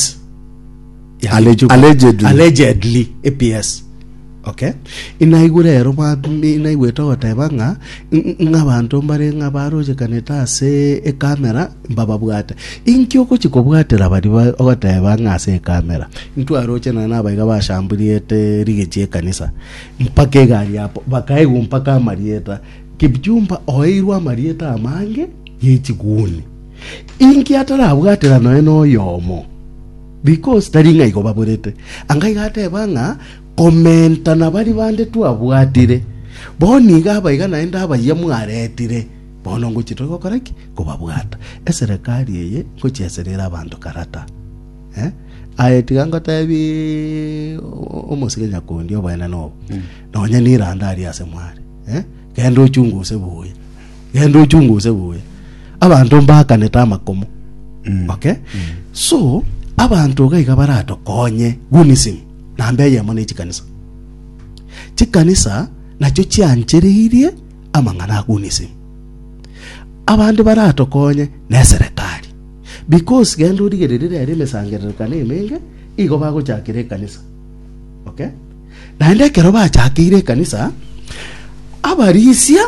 PS. Ya- Allegedly. Allegedly. Allegedly, e PS. Okay. inaigwe rero mwami inaigwete ogoteba ng'a ng- ng'a abanto mbare ng'a barochekanete ase ekamera mbababwate inki ogochi kobwatera bari ba- ogoteba ng'a ase ekamera ntwaroche na nabaiga bashamburiete rigechi ekanisa mpaka egari yapo bakaigwa mpaka amarieta kipchumba oeirwe amarieta amange yechiguni Inki atarabwatera nonya noyomo? Because tari ng'a igo baborete. Anga iga ateba ng'a komenta na baria bande twabwatire. Bono nigo abaiga naende abayia mwaretire, bono ngochia tore gokora ki? Kobabwata. Eserekari eye ngochia eserere abanto karata. Eh? Aye tiga ngotebie omosike nyakundi oboenene obo. Nonya niranda aria ase mware. Eh? Genda ochunguse buya. genda ochunge osegwe abanto mbakanete amakomo okay so abanto iga iga baratokonye gunism namba eyemo ne chikanisa chikanisa nacho chianchereirie amang'ana a gunism abande baratokonye ne serikali because genda origererie rero emesangererekano emenge igo bagochakera ekanisa Okay? Naende ekero bachakeire ekanisa, abarisia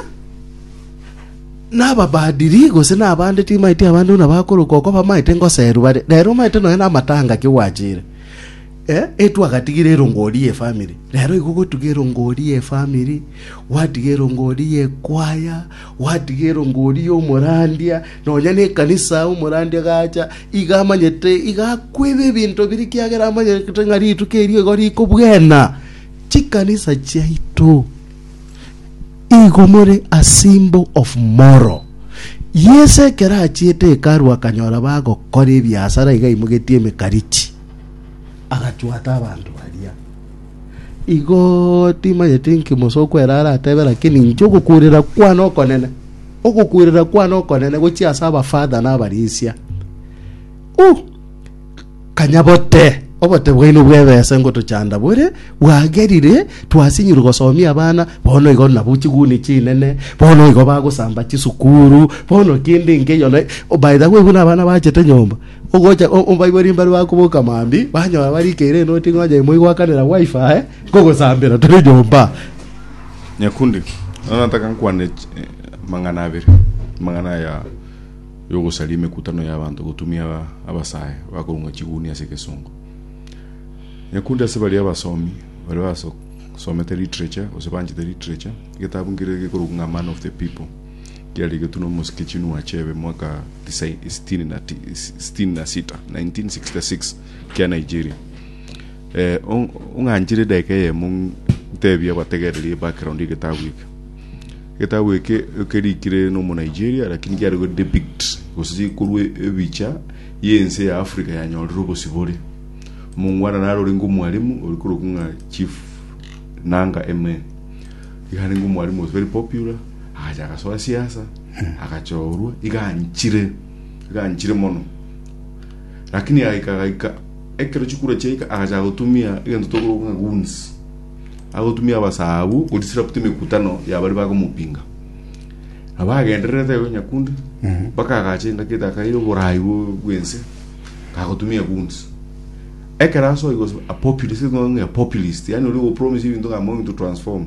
n'ababaadiri gose n'abande timaeti abande buna bakorokwa okwa bamaete ngoserwa bare. Rero omaete nonya namatanga ki gwachire. Eh, etwagatigire erongori ye family. Rero igo gotuga erongori ye family, gwatiga erongori ye kwaya, gwatiga erongori y'omorandia, Nonya nekanisa omorandia gacha, iga amanyete, iga akweba ebinto biria ekiagera amanyete ng'a rituko erio igo riko bwena. Chikanisa chiaito igo more a symbol of moral. Yeso ekero achiete hekalu akanyora bagokora ebiasara iga aimogetie emekarichi, agachwata abanto baria. Igo timanyeti inki Musa okwera aratebe, lakini inche ogokuurera kwane okonene, ogokuurera kwane okonene gochia ase abafather na abarisia. Uh! kanya bote obote bwaino bw'ebesa ngotochanda bore bwagerire twasinyirwe gosomia abana bono igo nabo chiguni chinene bono igo bagosamba chisukuru bono kende inke eyo na by the way buna abana bachete nyomba Ogocha omobaibwa rimbaru bakoboka mambia, banyora barikeire enoti ngonya imo igoakanera gwaifaa aye, nkogosambera tore nyomba. Nyakundi, nao nataka nkwane amang'ana abere, amang'ana aya y'ogosaria emekutano y'abanto gotumia abasae bakorung'a chiguni ase egesongo. Nyakundi ase baria abasomi baria basomete literature gose banchete literature, egetabu nkere gekorokwa ng'a Man of the People. Kiarigetwe nomosike Chinua Achebe mwaka tisaini, sitini na ti, sitini na sita, 1966 kia Nigeria. Eh, ong- ong'anchire edageka eyemo ntebia abategererie background egetabu eke. Egetabu eke kerikire nomo Nigeria lakini kiarigwe depict gose chikorwa ebicha yense ya Africa yanyorire obosibore. Omongwana naro orenge omwalimu ori korokwa ng'a Chief Nanga Eme. Iga arenge omwalimu was very popular agacha agasoa siasa agachorwa iganchire iganchire mono lakini agaika agaika ekero chikura chiaika agacha gotumia egento tokorwa ng'a goons agotumia abasabu kudisrupt emekutano yabari bakomopinga abagendererete igo nyakundi mpaka agacha endaki etakaire oborai bwo- bwense agotumia goons ekero asoa he was a populist ng'a populist yani ori opromise ebinto ng'a I'm going to transform